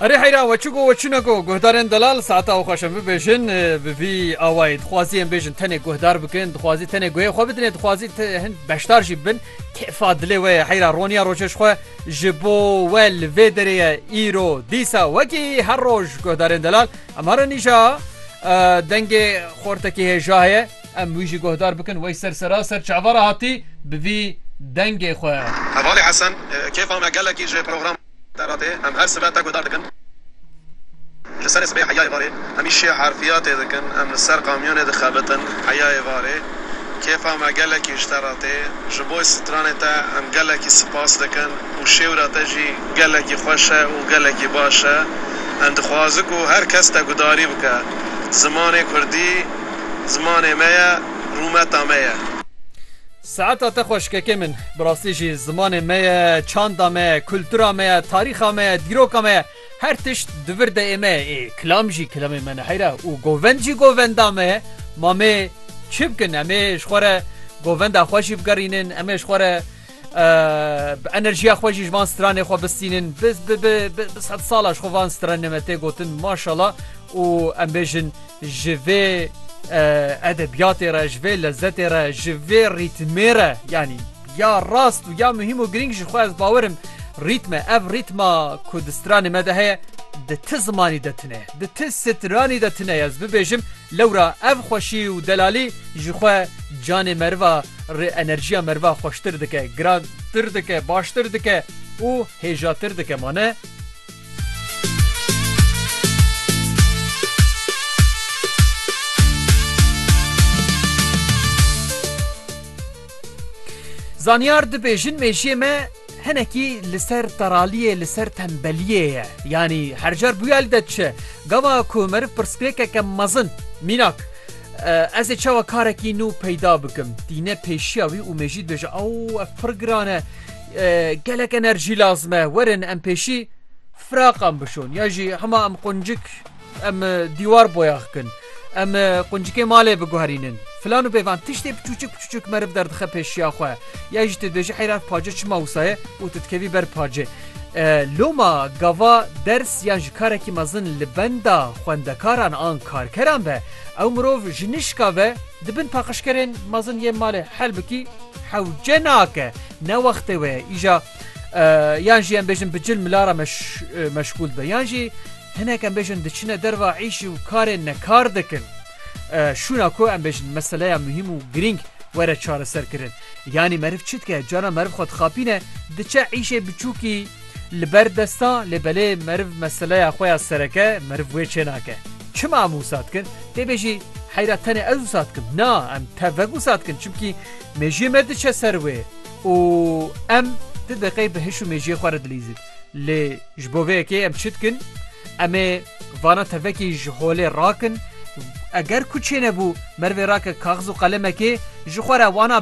Erê heyra we çi go we çi ne go guhdarên delal saeta û xweşin bibêjin bi vî awayî dixwazî em bêjin tenê guhdar bikin dixwazî tenê guhê xwe bidinê dixwazî hin beşdar jî bin kêfa dilê we ye heyra roniya rojê ji xwe ji bo we li vê derê ye îro dîsa wekî her roj guhdarên delal em herin îja dengê xortekî hêja heye Em wî jî guhdar bikin wey ser seraser çavara hatî bi vî dengê xwe. Hevalî Hesen, Kêfa me gelekî ji programan te re tê. Em her sibe te guhdar dikin. Ji serê sibê heyayê varê hemîşî harfiyatê dikin. Em li ser kamyonê dixebitin heyayê varê. Kêfa me gelekî ji te re tê. Ji bo stranê te em gelekî sipas dikin û şêwra te jî gelekî xweş e û gelekî baş e. Em dixwazin ku her kes te gudarî bike. Zimanê kurdî. Zimanê me ye, rûmeta me ye. Saeta te xweş kekê min. Bi rastî jî zimanê me ye, çanda me ye, kultura me ye, tarîxa me ye, dîroka me ye, her tişt di vir de ê me ye. Ê kilam jî kilamê me ne heyra û govend jî govenda me ye. Mamê çi bikin? Em ê ji xwe re govenda xwe jî bigerînin, em ê ji xwe re Bi enerjiya xwe jî ji van stranê xwe bistînin biz bi sed sala ji xwe van stranê me tê gotin maşala û em bêjin ji vê edebiyatê re ji vê lezzetê re ji vê rîtmê re yanî ya rast û ya muhîm û girîng ji xwe ez bawerim rîtme ev rîtma ku di stranê me de heye di ti zimanî de tune di ti stranî de tune ez bibêjim lewra ev xweşî û delalî ji xwe canê meriva Rê enerjiya merva xweştir dike, girantir dike, baştir dike û hêjatir dike ma ne? Zanyar dibêjin mêjiyê me hinekî li ser teraliyê li ser tembeliyê ye. Yanî her car bûye li de diçe. Gava ku meriv pirsgirêkeke mezin mînak Ez ê çawa karekî nû peyda bikim tîne pêşiya wî û mêjî dibêje ew ev pir giran e gelek enerjî lazim e werin em pêşî firaqan bişon ya jî hema em quncik em dîwar boyax kin em quncikê malê biguherînin filan û pêvan tiştê piçûçik piçûçik meriv derdixe pêşiya xwe ya jî tu dibêje heyra pace çima wsaye û tu dikevî ber pacê loma gava ders yan ji karekî mezin li benda xwendekaran an karkeran be Ew mirov ji nişka ve di bin paqijkerên mezin yên malê Helbikî hewce nake. Ne wextê we ye îja yan jî em bêjin bi cil mila re meşgûl dibe yan jî hinek em bêjin diçine derva îş û karê nekar dikin. Şûna ku em bêjin meseleya muhîm û girîng were çareserkirin. Yanî meriv çi dike? Cana meriv xwe dixapîne diçe îşê biçûkî Li ber desta lê belê meriv meseleya xwe ya sereke meriv wê çênake. Çima em wisa dikin? Tê bêjî heyra tenê ez wisa dikim. Na em tevvek wisa dikin çimkî mêjiyê me diçe ser wê û em ti deqê bi hiş û mêjiyê xwe re dilîzin. Lê ji bo vê yekê em çi dikin? Em ê vana tevvekî ji holê rakin. Eger ku çênebû merivê rake kaxiz û qelemekê ji xwe re wana